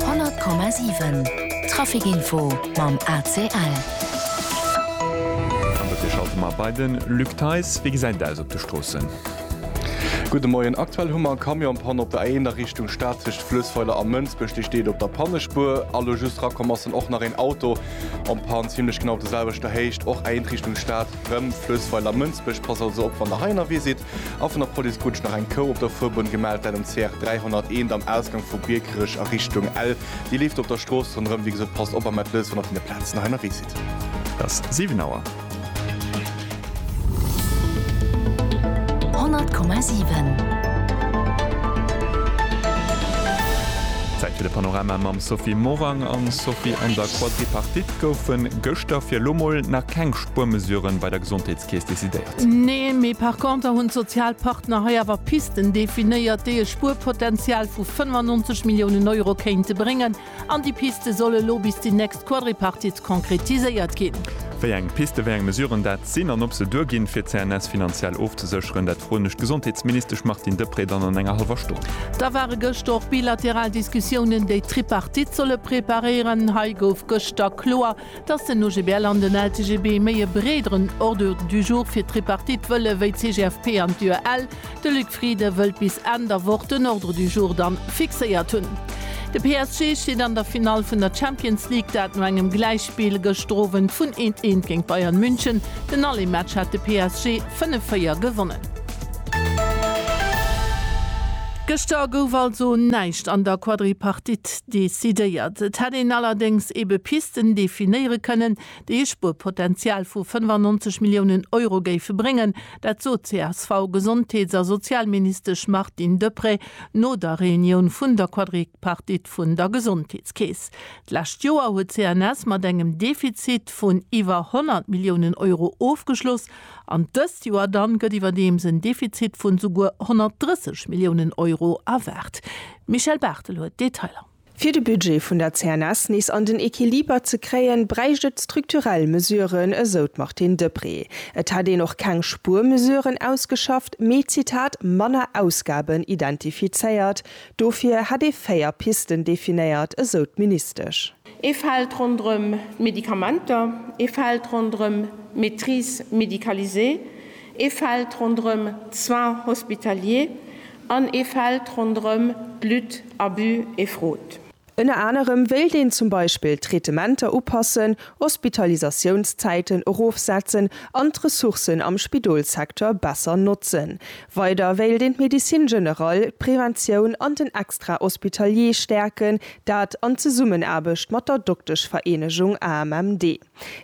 100,7 Trafic info mam ACL. An dofir schalte mer bei de Luc Theis. Wéi gesäit et aus op de Stroossen? Gudde Moien. Aktuell hu mer eng Camionspanne op der A1 a Richtung Stad tëscht Fluessweiler a Mënsbech. Déi steet op der Pannespur. A lo just rakomm ass dann och nach een Auto an d'Pann, zimlech genau op der selwechter Héicht. Och A1 Richtung Stad, rëm Fluessweiler, Mënsbech. Passt also op, wann der hei ënnerwee sidd. A vun der Police krut ech nach eng Kou op der Fuerbunn gemellt, dat um CR 301 am Ausgang vu Biekerech a Richtung Ell. Dir leeft op der Strooss ronderëm. Wéi gesot, passt op, a mellt lous, wann der vun där Plaz nach ënnerwee sidd. Et ass 7 Auer. 100,7. Zäit fir de Panorama mam Sophie Morang. An Sophie, an der Quadripartite goufen gëschter fir elo mol nach keng Spuermesuren bei der Gesondheet Kees decidéiert. Nee, mee par conter hunn d'sozial Partner hei awer Pisten definéiert, déi e Spuerpotential vu 95 Milliounen Euro kéinte bréngen. An déi Piste soll elo bis déi nächst Quadripartite konkretiséiert ginn. Wéi eng Piste, wéi eng Mesuren dat sinn an ob se duerginn, fir d'CNS finanziell ofzesécheren, dat froen ech d'Gesondheetsministesch Martine Deprez dann an enger hallwer Stonn. Da ware gëschter och bilateral Diskussiounen, déi d'Tripartite solle preparéieren. Hei gouf gëschter kloer, Dass den OGBL an den LCGB méi e breederen Ordre du jour fir d'Tripartite wëlle wéi d'CGFP an d'UEL. De Luc Frieden wëllt bis Enn der Woch den Ordre du jour dann fixéiert hunn. De PSG steet an der Finall vun der Champions League, dat no engem Gläichspill gëschter Owend vun eent eent géint Bayern München. Den Allé-Match hat de PSG 5-4 gewonnen. Gëschter gouf also näischt an der Quadripartite. Decidéiert. Et hätt een allerdéngs ebe Pisten definéiere kënnen, déi e Spuerpotenzial vu 95 Milliounen Euro géife bréngen. Dat sot d'CSV-Gesondheets a Sozialministesch Martine Deprez no der Reunioun vun der Quadripartite vun der Gesondheetskeess. D'lescht Joer huet d'CNS mat engem Defizit vun iwwer 100 Milliounen Euro ofgeschloss. An dëst Joer dann gëtt iwwerdeems en Defizit vun souguer 130 Milliounen Euro erwaart. D'Michèle Barthel huet d'Detailer. Fir de Budget vun der CNS nees an den Equiliber ze kréien, bräicht et strukturell Mesuren, esou d'Martine Deprez. Et hätt een och keng Spuermesuren ausgeschafft, mee, Zitat, manner Ausgaben identifizéiert. Dofir hätt ee véier Pisten definéiert, esou d'Ministesch. Ee Feld ronderëm d'Medikamenter, ee Feld ronderëm d'Maîtrise médicalisée, ee Feld ronderëm d'Soins hospitaliers an ee Feld ronderëm d'Lutte Abus et Fraude. Ënner anerem wéilt een zum Beispill d'Traitementer upassen, Hospitalisatiounszäiten erofsetzen an d'Ressourcen am Spidolsecteur besser notzen. Weider wéilt een d'Médecine générale, d'Preventioun an den Extra-hospitalier stäerken, Dat an Zesummenaarbecht mat der Dokteschvereenegung AMMD.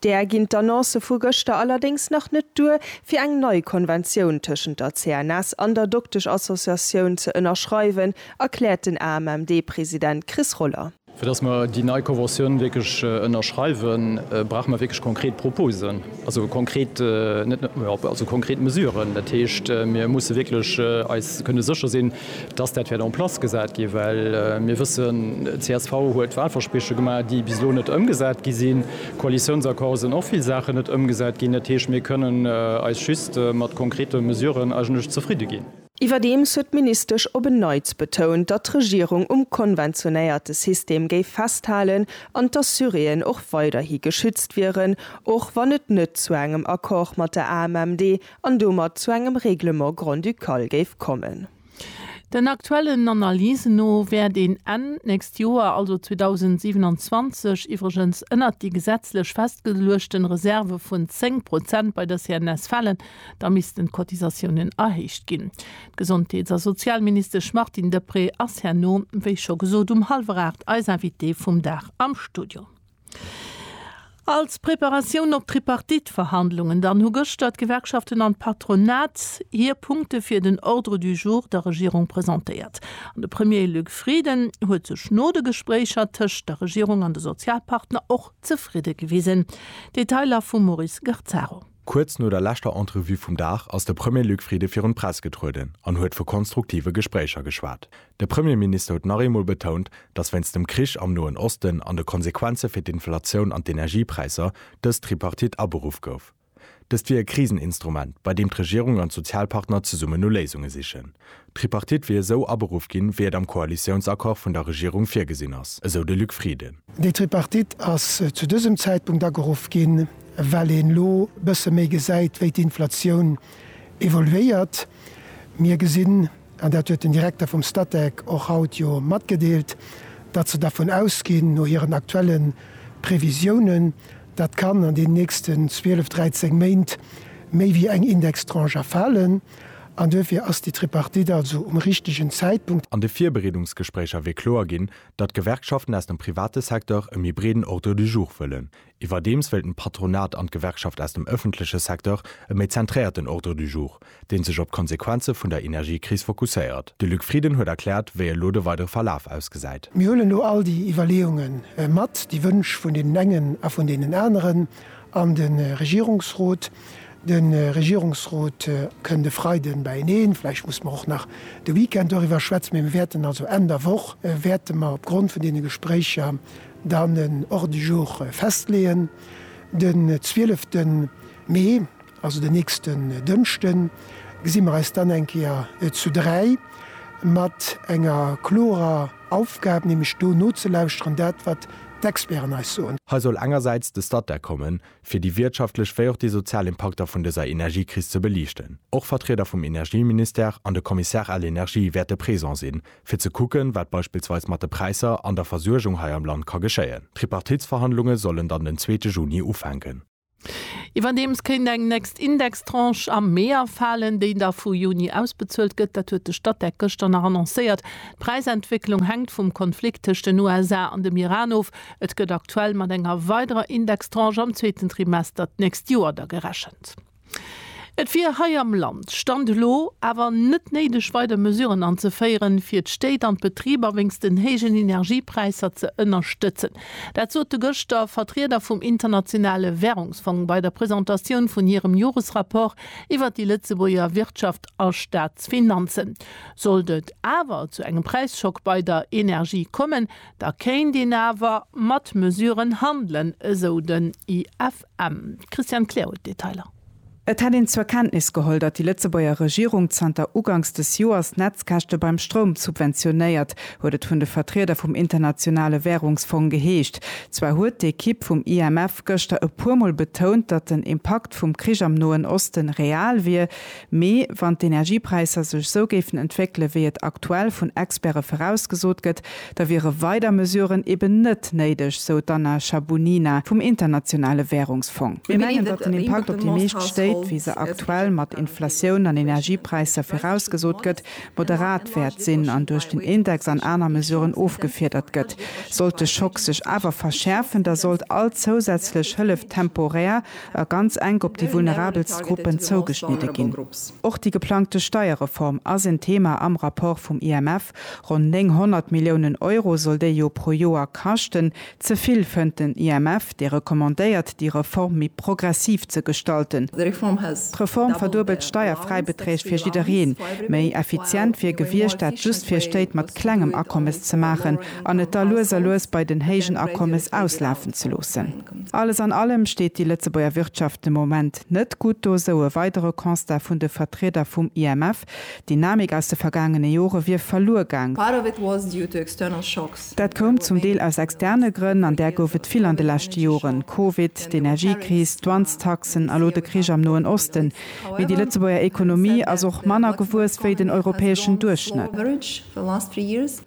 Där ginn d'Annoncë vu gëschter allerdéngs nach net duer, fir eng nei Konventioun tëschent der CNS an der Dokteschassociatioun ze ënnerschreiwen, erkläert den AMMD-President Chris Roller. Fir datt mer déi nei Conventioun wierklech ënnerschreiwen, brauche mer wierklech konkret Proposen, also konkret, net nëmme, also konkret Mesuren. Dat heescht, mir musse wierklech eis kënne sécher sinn, dass dat wäert en place gesat ginn, well mir wëssen, csv huet Wahlversprieche gemaach, déi bis elo net ëmgesat gi sinn. Am Koalitiounsaccord sinn och vill Saachen net ëmgesat ginn. Dat heescht, mir kënnen eis just mat konkrete Mesuren eigentlech zefridde ginn. Iwwerdeems huet d'Ministesch op en Neits betount, datt d'Regierung um konventionéierte System géif festhalen an d'Assuréen och weiderhi geschützt wieren, och wann et net zu engem Accord mat der AMMD an domat zu engem Règlement grand-ducal géif kommen. Den aktuellen Analysen no wäert een Enn d'nächst Joer, also 2027, iwwregens ënnert déi gesetzlech festgeluechten Reserve vun 10 Prozent bei der CNS falen. Da missten d'Cotisatiounen erhéicht ginn. D'Gesondheets a Sozialministesch Martine Deprez ass herno, wéi scho gesot, um hallwer aacht eis Invitée vum Dag am Studio. Als Preparatioun op d'Tripartite-Verhandlungen dann hu gëschter d'Gewerkschaften an d'Patronat hir Punkte fir den Ordre du jour der Regierung presentéiert. An de Premier Luc Frieden huet sech no de Gespréicher tëscht der Regierung an de Sozialpartner och zefridde gewisen. Detailer vum Maurice Garzaro. Kuerz no der leschter Entrevue vum Dag ass de Premier Luc Frieden virun d'Press getrueden an huet vu konstruktive Gespréicher geschwat. De Premierminister huet nach eemol betount, datt wéinst dem Krich am Noen Osten an de Konsequenze fir d'Inflatioun an d'Energiepräisser dës Tripartite aberuff gouf. Dëst wier e Kriseninstrument, bei deem d'Regierung an d'Sozialpartner zesummen no Léisunge sichen, D'Tripartite wier esou aberuff ginn, wéi et am Koalitiounsaccord vun der Regierung virgesinn ass, esou de Luc Frieden. Déi Tripartite ass zu dësem Zäitpunkt ageruff ginn, well een elo bësse méi gesäit, wéi d'Inflatioun evoluéiert. Mir gesinn, an dat huet den Direkter vum Statec och haut jo matgedeelt, datt se dervun ausginn, no hiren aktuelle Previsiounen, datt kann an den nächsten 12, 13 Méint méi wéi eng Indextranche erfalen. An duerfir ass déi Tripartite also um richtegen Zäitpunkt. An de Virbereedungsgespréicher wier kloer ginn, datt d'Gewerkschaften aus dem private Secteur e méi breeden Ordre du jour wëllen. Iwwerdeems wéilten d'Patronat an d'Gewerkschaft aus dem ëffentleche Secteur e méi zentréierten Ordre du jour, dee sech op d'Konsequenze vun der Energiekris fokusséiert. De Luc Frieden huet erkläert, wéi elo de weidere Verlaf ausgesäit. Mir huelen elo all déi Iwwerleeunge mat, déi Wënsch vun deenen engen a vun deenen aneren an de Regierungsrot. De Regierungsrot kënnt e Freiden beieneen, vläicht musse mer och nach de Weekend doriwwer schwätzen, mee mir wäerten also Enn der Woch wäerte mer opgrond vun deene Gespréicher dann en Ordre du jour festleeën. Den 12 Mee, also den nächsten Dënschden, gesi mer eis dann eng Kéier zu dräi mat enger klorer Aufgab, nämlech do nozelauschteren, dat wat d'Experten eis soen. Hei soll engersäits de Statec kommen, fir déi wirtschaftlech wéi och déi sozial Impakter vun dëser Energiekris ze beliichten. Och Vertrieder vum Energieministère an de Commissaire à l'Energie wäerte présent sinn, fir ze kucken, wat beispillsweis mat de Präisser an der Versuergung hei am Land ka geschéien. D'Tripartitsverhandlunge sollen dann den zweete Juni ufänken. Iwwerdeems kéint eng next Indextranche am Mee afalen, déi da vu Juni ausbezuelt gëtt. Dat huet de Statec gëschter nach annoncéiert. D'Präisentwécklung hänkt vum Konflikt tëscht den USA an dem Iran of. Et gëtt aktuell mat enger weiderer Indextranche am zweeten Trimester d'nächst Joer da gerechent. Et wier hei am Land, Stand elo, awer net néideg weider Mesuren anzeféieren, fir d'Stéit an d'Betriber wéinst den héijen Energiepräisser ze ënnerstëtzen. Dat sote gëschter Vertrieder vum Internationale Währungsfong bei der Presentatioun vun hirem Joresrapport iwwert déi Lëtzebuerger Wirtschaft a Staatsfinanzen. Sollt et awer zu engem Präisschock bei der Energie kommen, Da kéint een awer mat Mesuren handelen, esou den IFM. D'Christiane Kleer huet d'Detailer. Et hätt een zur Kenntnis geholl, datt déi Lëtzebuerger Regierung zanter uganks des Joers d'Netzkäschte beim Stroum subventionéiert, huet et vun de Vertrieder vum Internationale Wärungsfong geheescht. Zwar huet d'Ekipp vum IMF gëschter e puermol betount, datt den Impakt vum Krich am Noen Osten real wier, Mee wann d'Energiepräisser sech sou géifen entwéckele wéi et aktuell vun Experte virausgesot gëtt, da wiere weider Mesuren eben net néideg, sou d'Anna Shabunina vum Internationale Wärungsfong. Mir mengen, datt den Impakt op déi meescht Stéit, wéi se aktuell mat Inflatioun an Energiepräisser virausgesot gëtt, moderat wäert sinn an duerch den Index an aner Mesuren ofgefiedert gëtt. Sollt de Schock sech awer verschäerfen, da sollt all zousätzlech Hëllef temporär a ganz enk op déi vulnerabelst Gruppen zougeschnidde ginn. Och déi geplangte Steierreform ass en Thema am Rapport vum IMF. Ronn 900 Milliounen Euro soll déi jo pro Joer kaschten. Ze vill, fënnt den IMF, dee recommandéiert, déi Reform méi progressiv ze gestalten. D'Reform verduebelt d'Steierfräibeträg fir jiddereen. Méi effizient wier gewiescht, dat just fir Stéit mat klengem Akommes ze maachen an et da lues a lues bei den héijen Akommes auslafen ze loossen. Alles an allem steet déi Lëtzebuerger Wirtschaft de Moment net gutt do, sou e weidere Constat vun de Vertrieder vum IMF. D'Dynamik aus de vergaangene Jore wier verluer gaang. Dat koum zum Deel aus externe Grënn, an där gouf et vill an de leschte Joren, Covid, d'Energiekris, d'Dwanztaxen a lo de Krich am Noen Osten. Mee déi Lëtzebuerger Ekonomie ass och manner gewuess wéi den europäeschen Duerchschnëtt.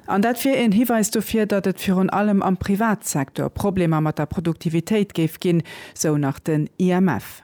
An dat wier een Hiweis dofir, datt et virun allem am Privatsektor Problemer mat der Produktivitéit géif ginn, sou nach den IMF.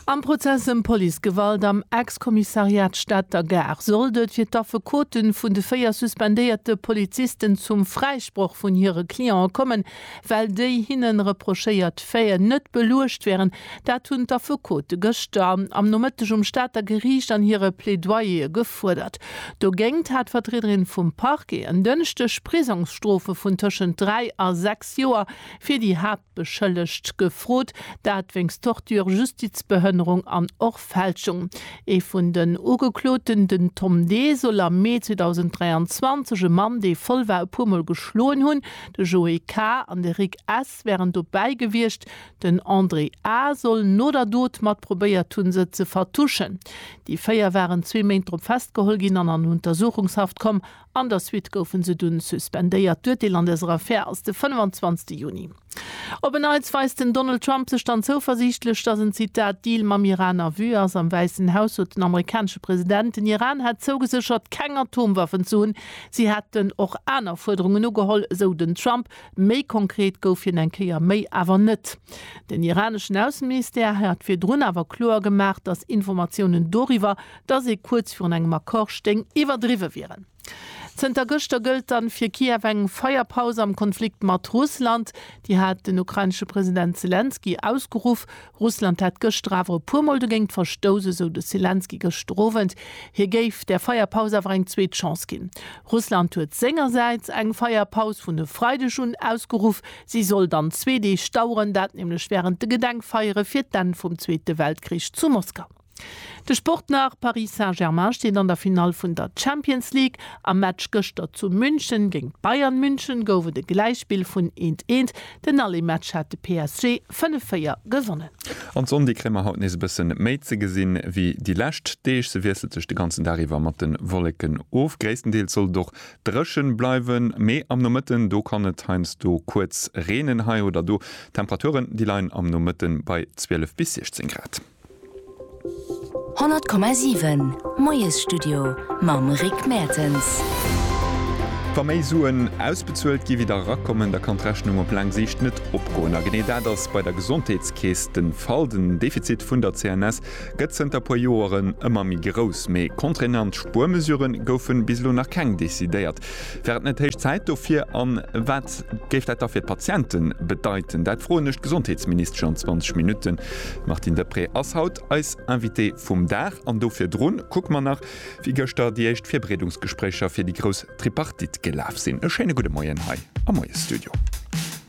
Am Prozess ëm Policegewalt am Ex-Kommissariat Stater Gare sollt et fir d'Affekote vun de véier suspendéierte Polizisten zum Fräisproch vun hire Cliente kommen, well déi hinnen reprochéiert Faiten net beluecht wären. Dat hunn d'Affekote gëschter am Nomëtteg um Stater Geriicht an hire Plädoyere gefuerdert. Dogéingt hat d'Vertriederin vum Parquet en Dënschdeg Prisongsstrofe vun tëschent dräi a sechs Joer fir déi Haaptbeschëllegt gefrot, dat wéinst Torture, Justizbehënnerung an och Fälschung. Ee vun den Ugekloten, den Tom D. soll am Mee 2023 e Mann, dee voll war, e puer Mol geschloen hunn. De Joe K. an de Rick S. wären dobäi gewiescht. Den André A. soll no der Dot mat probéiert hunn, se ze vertuschen. Déi véier waren zwee Méint drop festgeholl ginn an an Untersuchungshaft komm. An der Suite goufe se dunn suspendéiert. D'Urteel an dëser Affär ass de 25. Juni. Op en Neits weist den Donald Trump sech dann zouversiichtlech, datt en, Zitat, Deal mam Iran a Vue ass. Am Wäissen Haus sot den amerikanesche President, den Iran hätt zougeséchert, keng Atomwaffen ze hunn. Si hätten och aner Fuerderungen ugeholl, esou den Trump. Méi konkret gouf hien eng Kéier méi awer net. Den iraneschen Ausseministère hat virdrun awer kloer gemaach, datt Informatiounen doriwwer, datt ee kuerz virun engem Accord stéing, iwwerdriwwe wieren. Zënter gëschter gëllt dann fir Kiew eng Feierpaus am Konflikt mat Russland. Déi hat den ukrainesche President Selenskyj ausgeruff. Russland hätt gëschter awer e puer Mol dogéint verstouss, esou de Selenskyj gëschter Owend. Hie géif der Feierpaus awer eng zweet Chance ginn. Russland huet sengersäits eng Feierpaus vun e Freideg un ausgeruff. Si soll dann zwee Deeg daueren, dat nämlech wärend de Gedenkfeiere fir d'Enn vum Zweete Weltkrich zu Moskau. De Sport nach, Paris Saint-Germain steet an der Finall vun der Champions League. Am Match gëschter zu München géint Bayern München gouf et e Gläichspill vun eent, eent. Den Aller-Match hat de PSG 5, 4 gewonnen. An d'Sonn, déi kréie mer haut nees e bësse méi ze gesinn, ewéi déi lescht Deeg. Se wiesselt sech de ganzen Dag iwwer mat de Wolleken of. Gréisstendeels soll et och dréche bleiwen, mee am Nomëtten, do kann et heiansdo kuerz reenen, hei oder do. D'Temperaturen, déi leien am Nomëtte bei 12 bis 16 Grad. 100,7 Moiesstudio mam Rick Mertens. Wa méi Suen ausbezuelt gi wéi der erakommen, da kann d'Rechnung op laang Siicht net opgoen. A genee dat ass bei der Gesondheetskeess de Fall. Den Defizit vun der CNS gëtt zënter puer Joeren ëmmer méi grouss. Mee contraignant Spuermesure goufe bis elo nach keng decidéiert. Wär et net héich Zäit dofir? A wat géif dat da fir d'Patiente bedeiten? Dat froen ech d'Gesondheetsministesch an 20 Minutten. D'Martine Deprez ass haut eis Invitée vum Dag. An do virdrun kucke mer nach, wéi gëschter déi éischt Virbereedungsgespréicher fir déi grouss Tripartite gelaf sinn. E schéine gudde Moien hei am Moiesstudio.